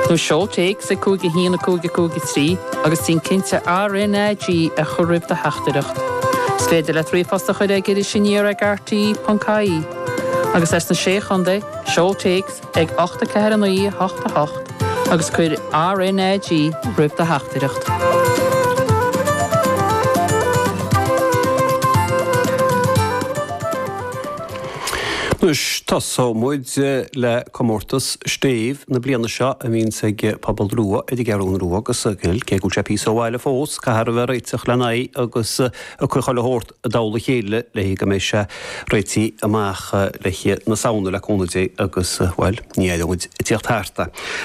Nó seol téacs ag 51553 agus déan cinnte RNAG a chur roimh do theachtaireacht. Is féidir leat ríomhphost a chur ag Iris Aniar ag rte.ie. Agus as na Sé Chontae, seol téacs ag 84988 agus cuir RNAG roimh do theachtaireacht. Anois tosóimid le Comórtas Stéibh na bliana seo a bhíonns ag Pobal Rua ar an gCeathrú Rua agus cé go bhfuil sé píosa ó bhaile fós, caithfear a bheith ag réiteach lena aghaidh agus a chuid ceoil a thabhairt i dtoll a chéile le go mbeidh sé réitithe amach i mí na Samhna le cúnamh Dé agus, bhuel, ní aireoidh muid ag tíocht thart.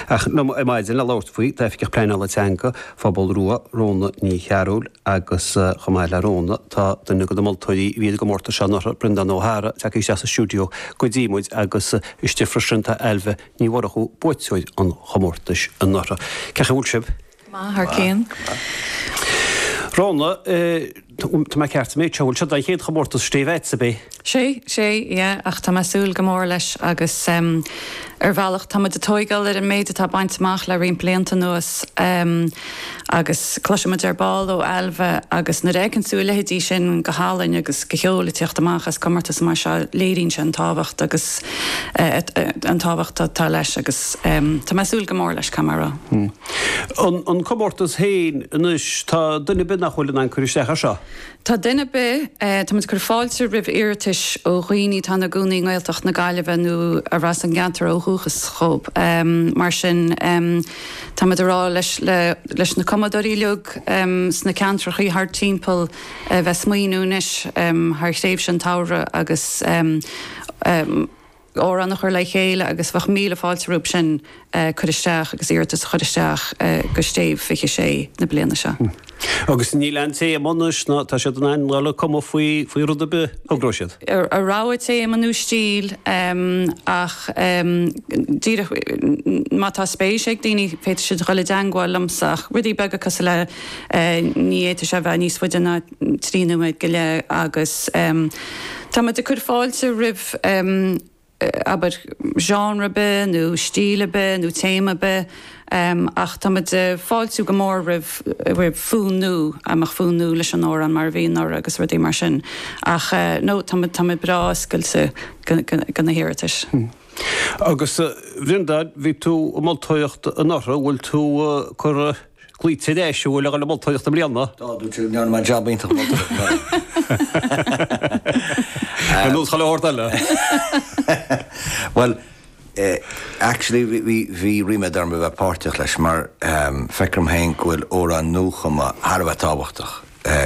Ach liom ar maidin le labhairt faoi tá Oifigeach Pleanála Teanga Phobal Rua, Rhóna Ní Chearbhaill agus chomh maith le Rhóna tá duine de na moltóirí a bhí ar an gcomórtas seo anuraidh, Breandán Ó hEaghra, tagtha isteach sa stiúideo go dtí muid agus Istigh freisin tá Ailbhe Ní Mhurchú, buaiteoir an chomórtais anuraidh. Cén chaoi a bhfuil sibh? Go maith thar cionn. Rhona, Tá mé ceart, an bhfuil seo an chéad chomórtas Stéibh dhuitse, ab ea? Sea, sea, yeah ach tá mé ag súil go mór leis agus ar bhealach tá muid ag tóigeáil ar an méid atá bainte amach le roinnt blianta anuas. Agus cloisfidh muid ar ball ó Ailbhe agus nuair a fheiceann tú a leithéidí sin guth álainn agus ceol ag teacht amach as comórtas mar seo léiríonn sé an tábhacht agus an tábhacht atá leis agus tá mé ag súil go mór leis chomh maith. An comórtas féin anois, tá duine ar bith nach bhfuil in ann cur isteach air seo? Tá duine ar bith, táimid ag cur fáilte roimh iarratais ó dhaoine atá ina gcónaí i nGaeltacht na Gaillimhe nó arb as an gceantar ó dhúchas dhóibh. Mar sin, táimid ag rá leis na cumadóirí uilig sna ceantrachaí thart timpeall a bheith ag smaoiniú anois thar thréimhse an tsamhraidh agus amhrán a chur le chéile agus bheadh míle fáilte rompu sin a chur isteach agus iarratas a chur isteach go Stéibh 26 na bliana seo. Agus níl aon téama anois ná tá siad in ann dul ag cumadh faoi rud ar bith a thogróidh siad. a rogha téama nó stíl ach díreach má tá spéis ag daoine féadfaidh siad dul i dteangmháil liomsa ach rudaí beaga cosúil le ní fhéadfaidh sé bheith níos faide ná trí nóiméad go leith agus tá muid ag cur fáilte roimh abair genre ar bith nó stíl ar bith nó téama ar bith ach tá muid ag fáiltiú go mór roimh roimh fonn nua, go mbeadh fonn nua leis an amhrán mar a bhí anuraidh agus rudaí mar sin ach no tá muid tá muid breá oscailte go na hiarratais. Agus a Bhreandáin bhí tú ag moltóireacht anuraidh bhfuil tú cur Cloítear leis an bhfuil aghaidh na moltóireacht i mbliana. Tá, dúirt sé go ndearna mé jab iontach moltóireachta. Ar nós chuile shórt eile. Bhuel, actually bhí, bhí ríméad orm a bheith páirteach leis mar feictear dom féin go bhfuil amhráin nuachumtha thar a bheith tábhachtach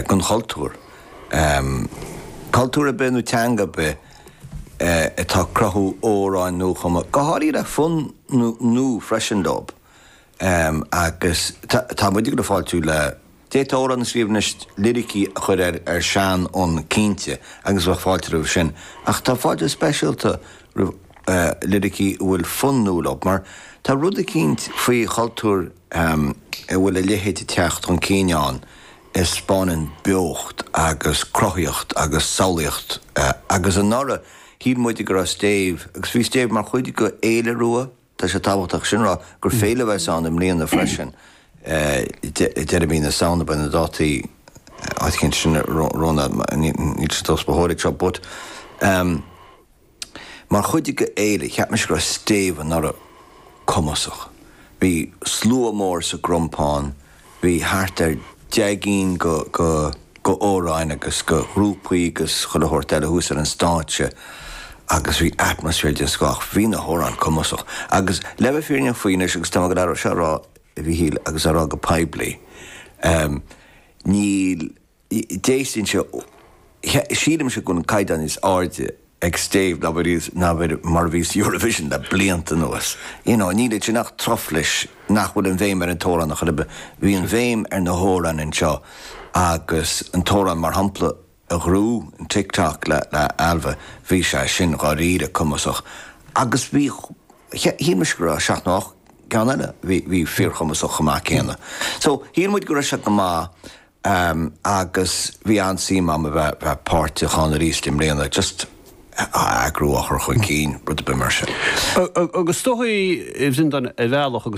don chultúr. Cultúr ar bith nó teanga ar bith atá ag cruthú amhráin nuachumtha, go háirithe le fonn nua freisin leo. Agus tá muid ag fáiltiú le. D'fhéadfá amhrán a scríobh anois, liricí a chur ar seanfhonn cinnte, agus bheadh fáilte roimh sin. Ach tá fáilte speisialta roimh liricí a bhfuil fonn nua leo, mar tá rud eicínt faoi chultúr a bhfuil a leithéid ag teacht chun cinn ann a 'speáineann beocht agus cruthaíocht agus samhlaíocht. Agus anuraidh, shíl muide go raibh Stéibh, agus bhí Stéibh mar chuid de Fhéile Rua. Tá sé tábhachtach sin a rá gur féile a bheas ann i mbliana freisin, deireadh mhí na Samhna, beidh na dátaí againn ansin romhainn mar níl sé tomhas ba chóir ag seo but mar chuid de fhéile, cheap mise go raibh Stéibh anuraidh cumasach, bhí slua mór sa gCrompán, Bhí thart ar deich gcinn de amhráin agus de ghrúpaí agus chuile shórt eile thuas ar an stáitse agus bhí atmaisféar den scoth. Bhí na hamhráin cumasach agus le bheith fírinneach faoi anois agus tá mé ag goil é seo a rá a Mhíchíl agus á rá go poiblí, níl. déistin seo, sílimse go bhfuil an caighdeán níos airde ag Stéibh ná mar a bhí sa Eurovision le blianta anuas. You know, níl ansin ach truflais nach bhfuil an bhéim ar an t-amhrán ar chor ar bith. Bhí an bhéim ar na hamhráin anseo agus an t-amhrán mar shampla a ghnóthaigh, Tick Tock le Ailbhe, bhí sé sin dháiríre cumasach agus bhí, shíl mise go raibh seacht nó ocht gceann eile a bhí fíorchumasach chomh maith céanna. So, shíl muid go raibh sé go maith Am, agus bhí an-suim agam a bheith bheith páirteach ann arís i mbliana, just á eagrú, á chur chun cinn, rud ar bith mar sin. Agus is dóigh, bhí an don ar bhealach agus.